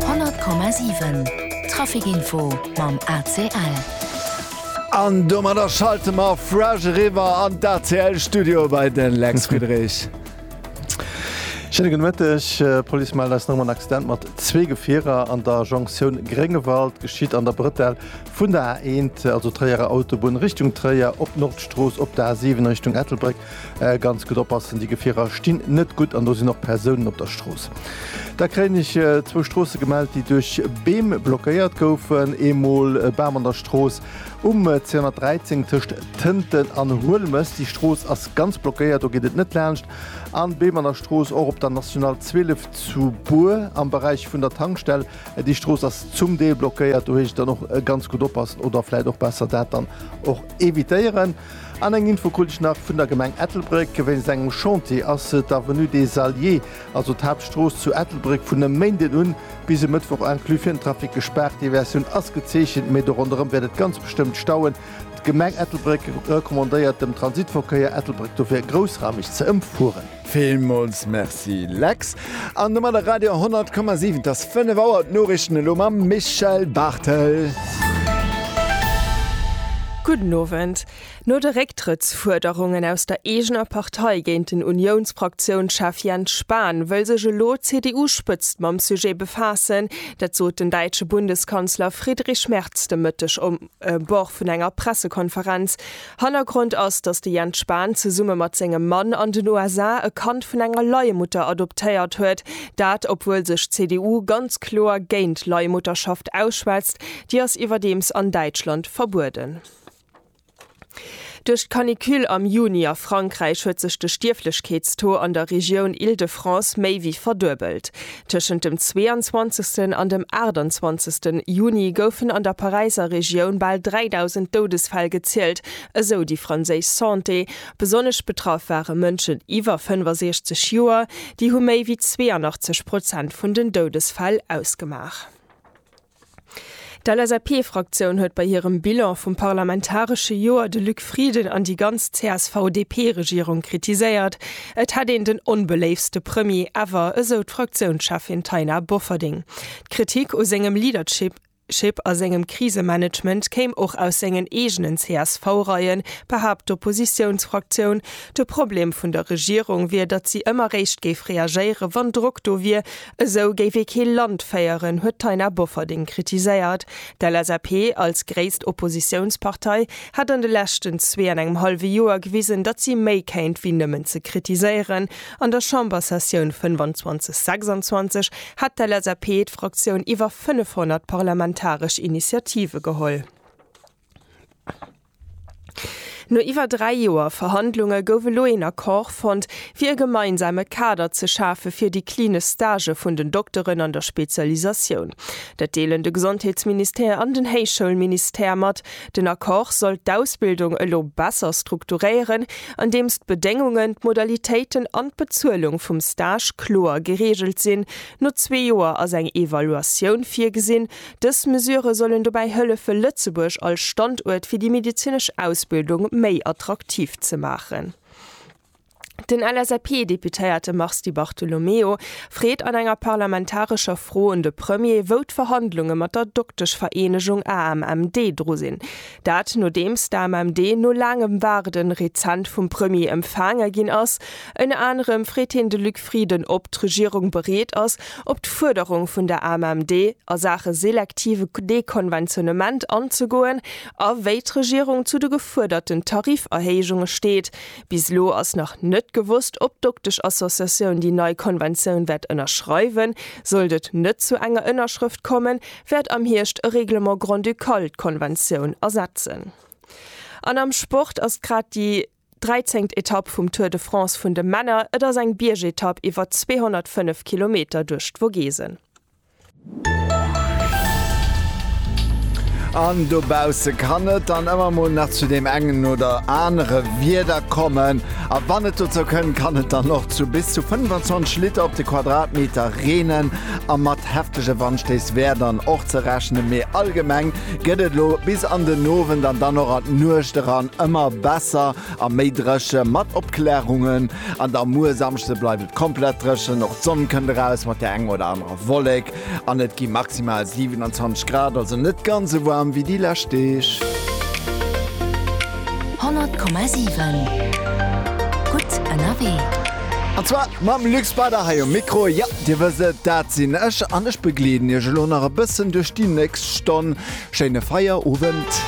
100,7 Traficinfo mam ACL. An domadder schalte mer fresh eriwwer an d'ACL Studio bei de Lex Friedrich. Schéine gudde Mëtteg. D'Police mellt eis nom en Accident mat zwee Gefierer an der Jonktioun Gréngewald. Geschitt an der Bretelle vun der A1, also Tréierer Autobunn Richtung Tréier, op d'Nordstrooss op der A7 Richtung Ettelbréck, Ganz gutt oppassen, déi Gefierer stinn net gutt an do sinn och Persounen op der Strooss. Da kréien ech zwou Stroosse gemellt, déi duerch Beem blockéiert goufen. Eemol e Bam an der Strooss um 213 tëscht Tënten an Huelmes. Déi Strooss ass ganz blockéiert, do geet et net laanscht. An Beem an der Strooss och op der National 12 zu Bur am Beräich vun der Tankstell. Déi Strooss ass zum Deel blockéiert, do heescht et dann och ganz gutt oppassen oder vläit och besser dat dann och evitéieren. An eng Info krut ech nach vun der Gemeng Ettelbréck, wéinst engem Chantier ass d'Avenue des Alliés, also d'Haaptstrooss zu Ettelbréck, vun e Méinden un bis e Mëttwoch inclus fir den Trafic gespaart. Diversioun ass gezeechent, mee do ronderëm wäert et ganz bestëmmt stauen. D'Gemeng Ettelbréck recommandéiert dem Transitverkéier Ettelbréck dofir, groussraumeg ze ëmfueren. Villmools Merci Lex, an domadder Radio 10,7, et ass 5 Auer, d'Noriichten elo mam Michèle Barthel. Gudden Owend. No de Récktrëttsfuerderungen aus der eegener Partei géint den Uniounspraktiounschef Jens Spahn, wëll sech elo d'CDU-Spëtzt mam Sujet befaassen. Dat sot den däitsche Bundeskanzler Friedrich Merz de Mëtteg um Bord vun enger Pressekonferenz. Hannergrond ass, datt de Jens Spahn zesumme mat sengem Mann an den USA e Kand vun enger Leiemutter adoptéiert huet. Dat, obwuel sech d'CDU ganz kloer géint Leiemutterschaft ausschwätzt. Déi ass iwwerdeems an Däitschland verbueden. Duerch d'Canicule am Juni a Frankräich huet sech de Stierflechkeetstaux an der Regioun Île-de-France méi wéi verduebelt. Tëschent dem 22. an dem 28. Juni goufen an der Paräiser Regioun bal 3.000 Doudesfäll gezielt, esou déi franséisch Santé. Besonnesch betraff ware Mënschen iwwer 65 Joer, déi hu méi wéi 82 Prozent vun den Doudesfäll ausgemaach. D'LSAP-Fraktioun huet bei hirem Bilan vum parlamentaresche Joer de Luc Frieden an déi ganz CSV-DP-Regierung kritiséiert. Et hätt een den onbeléiftste Premier ever, esou d'Fraktiounscheffin Taina Bofferding. D'Kritik u sengem Leadership a sengem Krisemanagement kéim och aus sengen eegenen CSV-Reien, behaapt d'Oppositiounsfraktioun. De Problem vun der Regierung wier, datt si ëmmer réischt géif reagéieren, wann Drock do wier, Esou géif ee kee Land féieren, huet d'Taina Bofferding kritiséiert. D'LSAP als gréisst Oppositiounspartei hätt an de leschten zwee an engem hallwe Joer gewisen, datt si méi kéint wéi nëmmen ze kritiséieren. An der Chambersessioun 25, 26 hätt d'LSAP, d'Fraktioun, iwwer 500 parlamentaresch Initiative geholl. No iwwer dräi Joer Verhandlunge gouf elo een Accord fonnt, fir e gemeinsame Kader ze schafe fir déi klinesch Stagë vun den Dokteren an der Spezialisatioun. Dat deelen de Gesondheetsministère an den Héichschoulministère mat. Den Accord soll d'Ausbildung elo besser strukturéieren, andeems d'Bedéngungen, d'Modalitéiten an d'Bezuelung vum Stage kloer gereegelt sinn. No zwee Joer ass eng Evaluatioun virgesinn. Dës Mesure sollen dobäi hëllefe Lëtzebuerg als Standuert fir déi medezinesch Ausbildung méi attraktiv ze maachen. Den LSAP-Deputéierte Mars Di Bartolomeo freet an enger parlamentarescher Fro un de Premier, wou d'Verhandlunge mat der Dokteschvereenegung AMMD dru sinn. Dat nodeems d'AMMD no laangem Waarde rezent vum Premier empfaange ginn ass. Ënner anerem freet hien de Luc Frieden, ob d'Regierung bereet ass, op d'Fuerderung vun der AMMD a Saache selektive Dekonventionnement anzegoen a wéi d'Regierung zu de gefuerderten Tariferhéijunge steet. Bis elo ass nach net gewosst, ob d'Dokteschassociatioun déi nei Konventioun wäert ënnerschreiwen. Sollt et net zu enger Ënnerschrëft kommen, wäert am Hierscht e Règlement grand-ducal d'Konventioun ersetzen. An am Sport ass grad déi 13. Etapp vum Tour de France vun de Männer. Et ass eng Biergetapp iwwer 205 Kilometer duerch d'Vogesen. An dobausse kann et dann ëmmer mol nach zu deem engen oder anere Wieder kommen. A wann et dozou kënnt, kann et dann och zu bis zu 25 Liter op de Quadratmeter reenen. a mat heftege Wandstéiss wär dann och ze rechnen, mee allgemeng gëtt et elo bis an den Owend an dann och an d'Nuecht eran ëmmer besser a méi dréche mat Opklaarungen. An da muer Samschde bleift et komplett dréchen, och d'Sonn kënnt eraus mat der enger oder anerer Wollek an et gi maximal 27 Grad, also net ganz esou waarm wéi déi lescht Deeg. 100,7 gutt ënnerwee. An zwar mam Luc Speider hei um Mikro, jo. Dir wësst et, dat sinn ech an ech begleeden iech elo nach e bëssen duerch déi nächst Stonn. Schéine Feierowend.